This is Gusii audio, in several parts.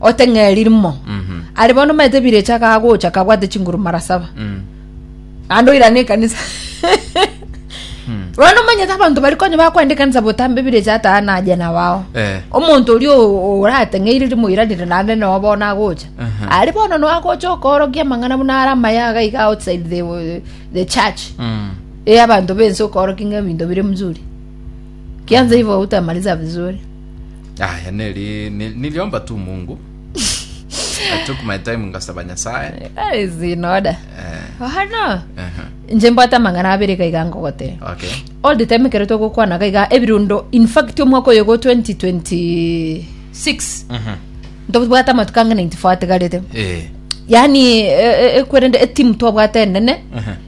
oteng'eri rimo ari bono omanyete ebirecha kagocha kabwate chinguru mara saba naende oirane ekanisa bono omanyete abanto bari konya bakwenda ekanisa botambe ebirecha ata naye nabao Eh. omonto oria o- orateng'eire rimo oiranire naende noo bono agocha Aha. ari bono no agocha okoorokia amang'ana buna ara amayaga iga outside the, the church Mm. e abanto bense okoorokia ng'a ebinto bire mzuri kianza hivyo utamaliza vizuri Aya neri ni- niliomba tu Mungu. I took my time ngasaba Nyasaye. That is in order. Eh, Oh, no. ehe. Nje mbwate amang'ana abere iga iga ngogote. Okay. All the time ekero togokwana gaiga ebirundo in fact omwaka oyo go 2026 Mhm. ntobwate amatuko ang'ana intifo atigarete. Eh, yani eh, eh, ekwerende etimu twabwate enene ehe.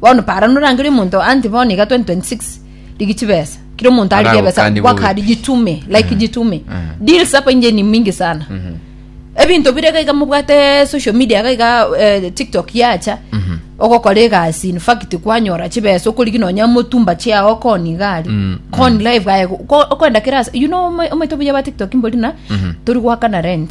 Bono para norangerie omonto anti bono iga 2026 rigi chibesa kira omonto arigie ebesa Aragokani gwakari bobe. jitume like jitume deals apa inje ni mingi sana ebinto bire iga iga mobwate social media iga iga eh, tiktok yacha ogokora egasi in fact kwanyora chibesa okorigi nonya motumba chiao okoni iga ari Mm, koni live aye ko- okoenda kera ase- you know omo- omoito buya ba tiktok mbori na tori gwakana rent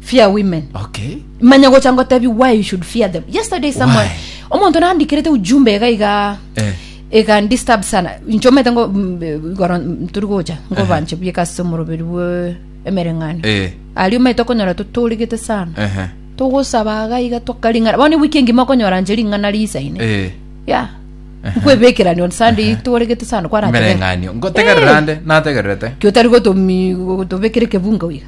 fear women okay manya gocha ngotebi why you should fear them yesterday someone Why? omonto nandikirete ujumbe iga iga Eh. iga disturb sana nchomete ngo mm, eh, igoro mm, turi gocha ngo banche buyeka ase omoroberi bwe emereng'ano Eh. ari omete okonyora totorigete sana Ehe. togosaba iga iga twakaring'ana bono wiki engima okonyora nche ring'ana risaine Eh. ya nkwebekerani on sunday toregete sana kwaratebera Mereng'anio. Ngotegerera nde nategererete kio tari gotomi gotobekere kebunga iga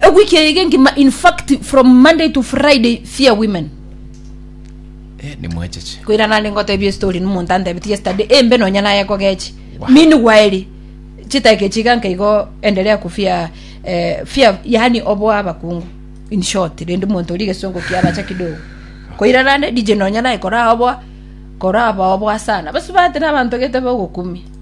Ewiki eye engima in fact from Monday to Friday fear women. Eh, nimwecheche. Koira nande ngotebia story nomonto antebetie yesterday embe nonya naye kogechi. Wow. Mini gwaeri chitake chiga nkaigo endelea kufia eh, fear yani obo abakungu. In short rende monto ri gesongo kia bacha kidogo. Koira nande DJ nonya naye kora obo kora obo obo sana. Basi bate na bantu gete bogokumi.